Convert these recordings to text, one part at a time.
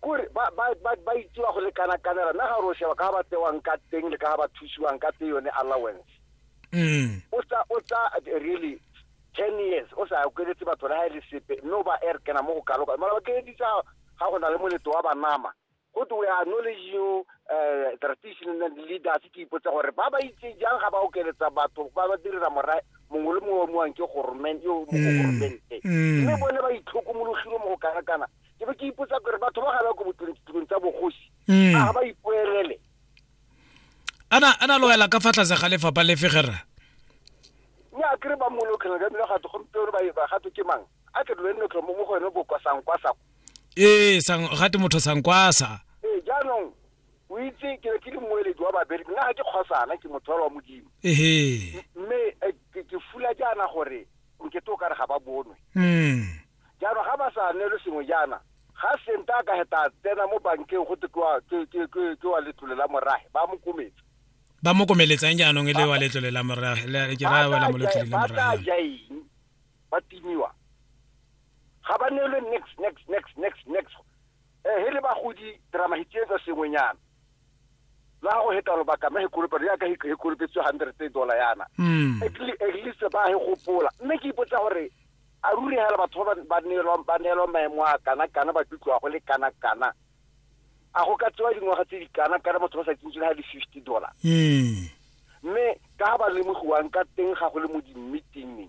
Kore ba, ba, ba, ba itsewa go le kana kanela mme ga re o sheba ka ga ba tsewang ka teng le ka ga ba thusiwang ka tse yone allowance mm. o tsa o tsa really ten years o sa kweletse batho le ga e le sepe mme o ba air kena mo go kaloka mara ba keleditsa ga go na le moletlo wa banama go twe we are knowledge you uh, traditional leaders ke ipotsa gore ba ba itse jang ga ba okeletsa batho ba ba direla morae mongwe le mongwe wa moang ke gormente yo mo mm. gormente mm. mme bone ba itlhokomologile mo go kana-kana ke be ke ipotsa gore batho ba ga ba ko botirong tsa bogosi mm. a ga ba ipoelele ana ana loela ka fa tlase ga lefapha lefe gera mme a kere ba mmolokhela ka bile gato gompieno ba gato ke mang a ke dole nne mo go ene bokwa sankwasa ee gate motho sankwasa ee jaanong o itse ke ne ke le mmueledi wa babereki nna ga ke kgosana ke motho wa modimo mme eh, ke fula jaana gore nkete o kare ga ba bonwe hmm. jaanong ga ba sa neelo sengwe jaana ga senta a ka heta tsena mo bankeng go te ke wa letlole la morage ba mo kometse ba mo komeletsang jaanong e le wa letlole la morage ke raya wela mo letlole la morage jaeng ba timiwa ga ba neelwe next next next next next Eh, he le bagodi ra mahitsietsa sengwenyana la go heta lobaka mme hekolopelo yaka hekolopetswe hundred e dollar yana mm. at least ba he gopola mme ke ipotsa gore a ruri hela batho ba ba neelwa maemo a kana kana ba tlutloa go le kana kana a go ka tsewa dingwaga tse di kana kana motho ba sa tsentsweng ha le fifty dollar mm. mme ka ga ba lemogiwang ka teng ga go le mo dimmeetingeng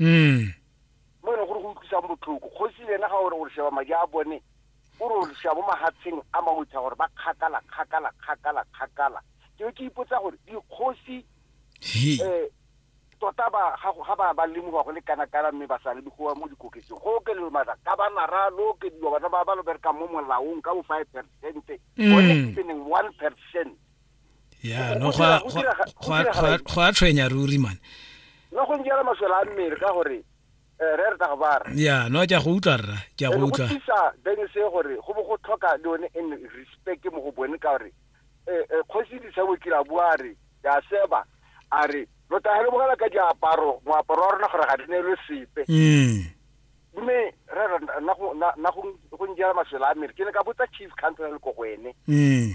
mm mo e leng gore go utlwisang botlhoko kgosi le ena ga ore gore sheba madi a bone o re gore shabo mahatsheng a mangwe tsa gore ba kgakala kgakala kgakala kgakala ke be ke ipotsa gore dikgosi he eh tota ba ga go- ga ba ba lemoga go le kana kana mme ba sa lemogoa mo dikoketseng go okelelo mara ka ba nara lo okediwa bana ba ba lo berekang mo molaong ka bo five percent Mm. one percent ya no go a tshwenya ruri mane no go njela maswela a mmele ka gore eh, re re tla go bara ya no ke a go utlwa rra ke a go utlwa go tisa bene se gore go bo go tlhoka le one in respect mo go bone ka gore eh, eh, kgosi di sa bokira bua re ya seba a re lo tahele bogala ka diaparo moaparo wa rona gore ga di ne le sepe mm. mme re re na go na go njela maswela a mmele ke ne ka botsa chief council le ko go ene mm.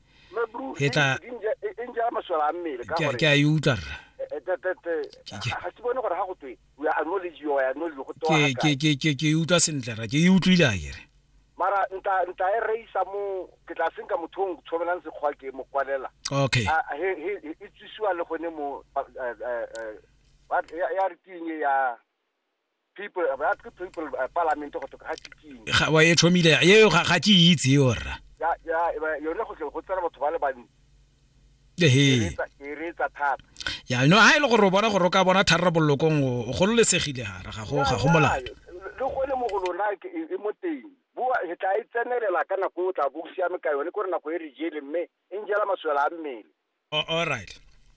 ke tla ke a e utlwa rra ke e utlwa sentle ra ke e utlwile a kere mara nta nta e reisa mo ke tla senka motho o tshobelang sekgwa ke mo kwalela okay ah, he he e tsisiwa le gone mo eh, eh, eh, ya re ke ya people ba tlo people uh, parliament go toka ga tsikini ga wa e tlhomile yeo ga ga ke itse yo rra ya ya ba- yone go tle go tsena batho ba le bantsi ehe e reetsa thata ya no ha e le gore o bona gore o ka bona tharabololokong o o gololesegile gara ga go ga go molato le gone mo go lona ke- e e mo teng boa re tla e tsenelela ka nako o tla bo o siame ka yone kore nako e re jele mme e njela maswela a mmele Oh, all right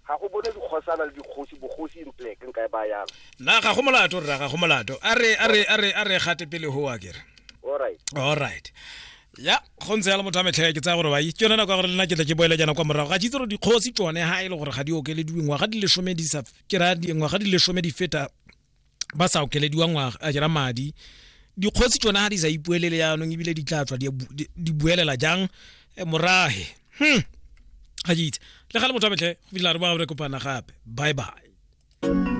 ga go bone dikgosana le dikgosi bogosi in black nka e ba yang na ga go molato rra ga go molato a re a re a re a re gate pele ho wa kere all right all right ya go ntse yalo motho a metlhaya ke tsaya gore bai ke yone nako ya gore lena ke tle ke boele jana kwa morago ga ke itse gore dikgosi tsone ga e le gore ga di okelediwe ngwaga di lesome di sa ke raya di- ngwaga di lesome di feta ba sa okelediwa ngwaga a jera madi dikgotsi tsone ga di sa ipuelele yaanong ebile di tla tswa di buelela jang eh, morage hmm ga itse le ga le motho a metlhe go fitlhela re ba re kopana gape bye bye